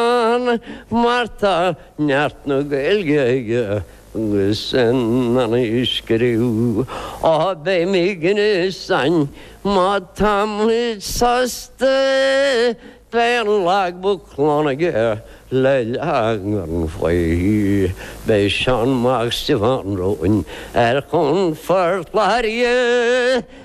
An Márta, Neart na Gaeilge aige agus in ann í a scríobh, Á beidh mé ag an fhiosainn, má tá muid sásta, beidh an logbook lán aige le leagan faoi. Beidh Seán Mac Stiofáin romhainn ar chuan Phort Láirge.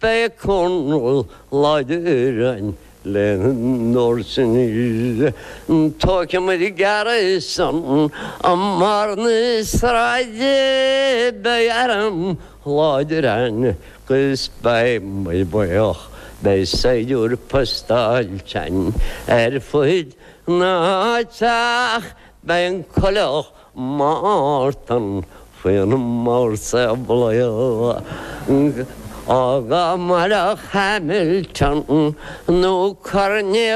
Beidh coirnéal láidir ann lena n-áirítear an t-óicim ar an gceathrú san am mar na sráideanna beidh arm láidir ann agus beidh muid buíoch. Beidh saighdiúir postáilte ann ar fud na háite. Beidh an coileach Mártan faoin mórsamhlaíocht á gcur mar a Hamilton nó Cornelius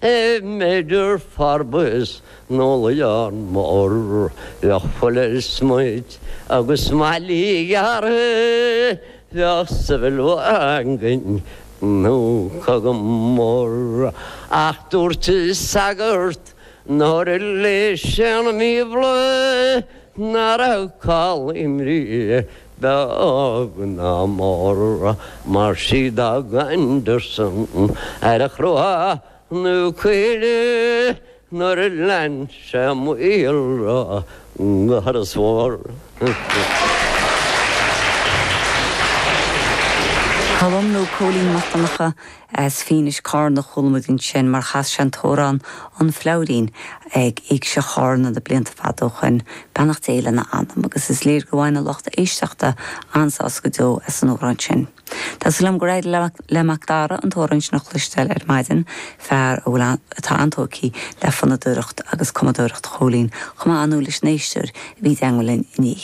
i Major Forbes nó Leon Mór, bheadh Fuller smiot agus Mailí ghearrtha, bheadh Sybil Whangin nó Cogan mór, ach dúirt sagart Nuair a léigh sé an Bíobla ná raibh call imní beag ná mór mar sí a d'fhág Anderson ar Chruach na Caoile nuair a lean sé a mhíolra go hIorras Mór. Colm nó Cóilín Mac Donncha As Fínis Cárna a chuala muid ansin mar chas sé an t-amhrán An Fleabhairín ag Éigse Chárna na blianta fada ó shoin, beannacht Dé lena anam, agus is léir go bhain a lucht éisteachta an-sásamh go deo as an amhrán sin. Tá súil agam gur éirigh le Macdara an t-amhrán sin a chloisteáil ar maidin, fear a bhfuil atá an-tógtha le fonnadóireacht agus cumadóireacht Chóilín, chomh maith, nó leis an éisteoir a bhí i dteangmháil linn inné.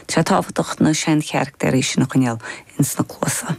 Tá sé tábhachtach na seancharachtair sin a choinneáil ins na cluasa.